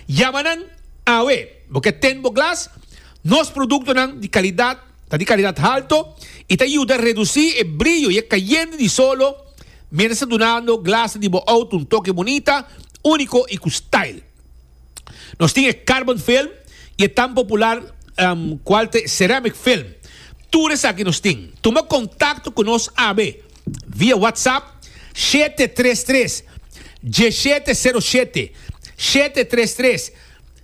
Yama nan awe, bo ke ten bo glas? Nos produktonan di kalidat ta di kalidat halto i ta yuda redusí e brillo i e kayende di solo miéntras ta dunando glasnan di bo outo un toke bunita, úniko i ku style. Nos tin e carbon film i e tan popular kual ta e ceramic film. Tur esaki nos tin. Tuma kontakto ku nos awe. via WhatsApp shete tres tres dieshete sero shete shete tres tres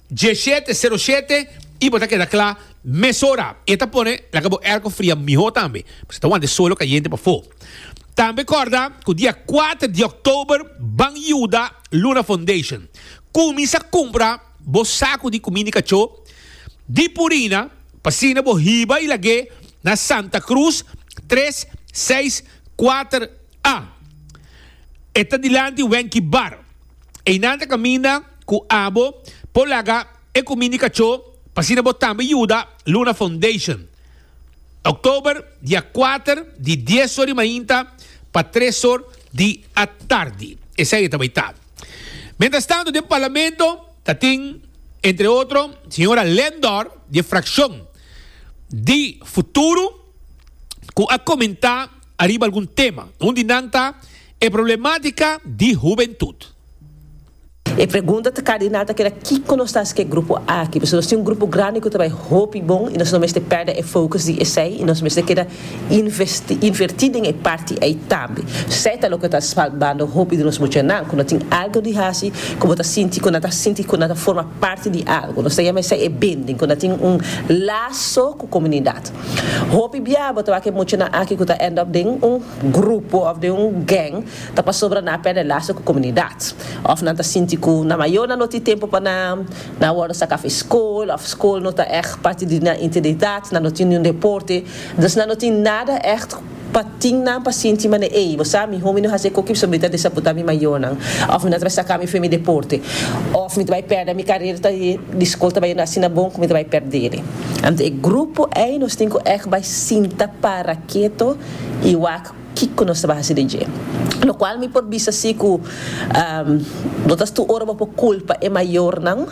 dieshete sero shete y bo ta keda kla mesora e ta pone laga bo airco fria miho tambe pask ta wante solo cayente pafo tambe corda cu dia cuater di october ban yuda Luna Foundation cuminsa cumpra bo saco di cuminda di cacho di purina P'asina bo hiba i lag'é na Santa Cruz tres, seis, kuater a. E ta dilanti Wenky Bar. Einan ta kaminda ku abo por laga e kumindi kachó p'asina bo tambe yuda Luna Foundation. Oktober dia kuater di dies or di mainta pa tres or di atardi. Esei e ta bai ta. Mientrastantu den Parlamento. Ta tin, entre otro, señora Lendor di e fraccion di Futuro cu a comenta ariba algun tema. Un di nan ta e problematica di hubentud. E pregunta ta cardinal ta keda kico nos ta haci cu e grupo aki? Pasobra nos tin un grupo grandi cu ta bay hopi bon y nos no mester perde e focus di esey y nos mester keda Investi, invertí den e parti ei tambe. Esei ta loke ta salbando hopi di nos muchanan ku no tin algu di hasi ku bo ta sinti ku nan ta sinti ku nan ta forma parti di algu. Nos ta yama esei e binding ku nan tin un laso ku komunidat. Hopi bia bo ta wak e muchanan aki ku ta end up den un grupo òf den un gèng ta pasobra nan a pèrdè laso ku komunidat òf nan ta sinti ku nan mayornan no tin tempu pa nan Nan a wòrdu saka afe skol òf skol no ta ègt parti di nan identidat, nan no tin niun deporte, dus nan no tin nada ègt pa tin nan pa sinti manera ei, bo sa, mi homi no hasi e koki pasobra mi ta desapuntá mi mayonan, òf mi no ta bai saká mi fe mi deporte, òf mi ta bai pèrdè mi karera ta e di skol ta bai yendo asina bon ku mi ta bai pèrdele. Anto e grupo ei nos tin ku ègt bai sinta para keto i wak. Kiko nos ta bay hasi den dje? Lo cual mi por bisa si cu bo ta stu ora bo por culpa e mayornan,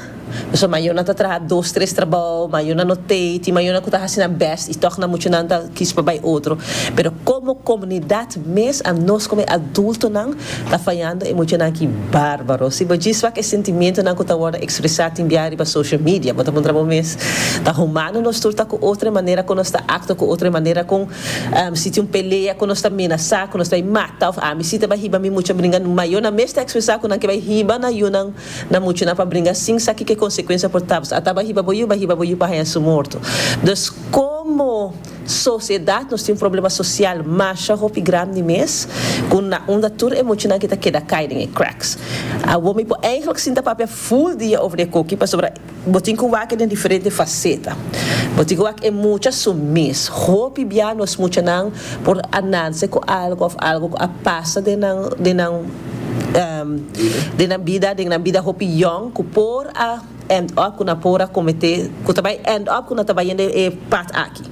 pasobra mayornan ta traha dos tres trabao, mayornan no tey, tin mayornan cu ta hasi nan best y toch nan muchanan ta kiss pa bay otro, pero como comunidad mes a nos como e adultonan ta fayando e muchanan aki barbaro. Si bo djis wak e sentimientonan cu ta wordo expresa tin bia riba social media, bo ta puntra bo mes, ta humano nos tur ta cu otro e manera cu nos ta acto cu otro e manera con Si tin un pelea ku nos ta menasá ku nos ta bai mata òf ami si ta bai hiba mi muchu a bringa nu, ma yo na mes ta ekspresá ku nan ke bai hiba na yunan na muchunan pa bringa sin sa kiko konsekuensia por tabata. Ata bai hiba bo yu, bai hiba bo yu pa haña su morto. Dus komo sosiedat nos tin un problema sosial masha hopi grandi mes ku un na unda tur e muchunan ke ta keda kai den e cracks. Awor mi por eigentlik sinta papia full dia over e koki pasobra, Bo tin ku wak e den diferente faseta. Bo tin ku wak e mucha su mes. Hopi bia nos muchanan por a nanse ku algu òf algu ku a pasa den nan den nan den nan bida den nan bida hopi yòn ku por a end up ku nan por a kometé ku ta bai end up ku nan ta bai hende e pat aki.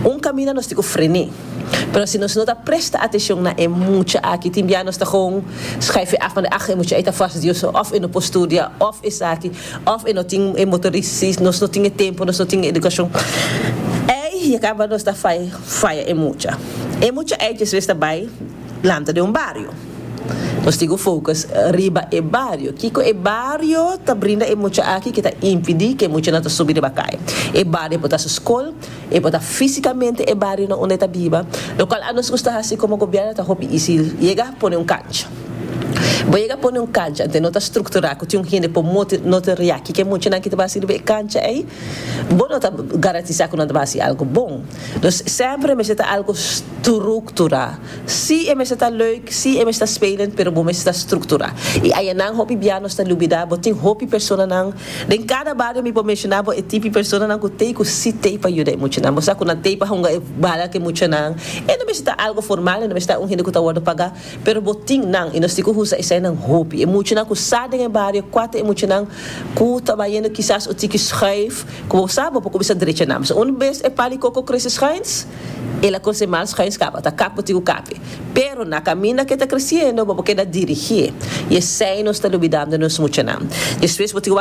Un kaminda nos tin ku frené. Pero si nos no ta presta atenshon na e mucha aki tin bia nos ta kon skaifi af manda ah e mucha ei ta fastidioso òf e no por studia òf esaki. Of e no tin e motoris si nos no tin e tempo nos no tin e edukashon ei ya kaba nos ta faya e mucha e mucha ei djesves ta bai lanta den un bario nos tin ku focus riba e bario kiko e bario ta brinda e mucha aki ke ta impidi ke e muchanan ta subi riba kai e bario por ta su skol E bota físikamente e barionan unda e ta biba, lokual a nos gusta hasi komo gobièrnu ta hopi isil yega pone un kancha. Bo yega pone un kancha te no ta strukturá ku tin un hende por mote no ta riaki ke muchanan ki ta bai hasi riba e kancha ei, bo no ta garantisá ku nan ta bai hasi algu bon. Nos sèmpre mester ta algu strukturá. Sí, e mester ta leuk, sí, e mester ta spelend, pero bo mester ta strukturá. I ayanan hopi bia nos ta lubidá bo tin hopi personanan den kada bario mi por menshoná bo e tipi personanan ku t'ei ku sí t'ei pa yuda e muchanan. Bo sa ku nan t'ei pa hunga e bala ku e muchanan. E no mester ta algu formal, e no mester ta un hende ku ta wòrdu pagá, pero bo tin nan i nos tin ku usa esainan hopi. E muchanan ku sa den e bario kua ta e muchanan ku ta bayendo kisas un tiki schuif, ku bo sa bo por kuminsá drecha nan. P'esei un bes e palikoko krese schuins. El a kosé mas huesca, bo ta kape ti ku kape. Pero na kaminda ke ta kresiendo, bo por keda dirigié. I esei nos ta lubidando nos muchanan. Despues bo tin ku.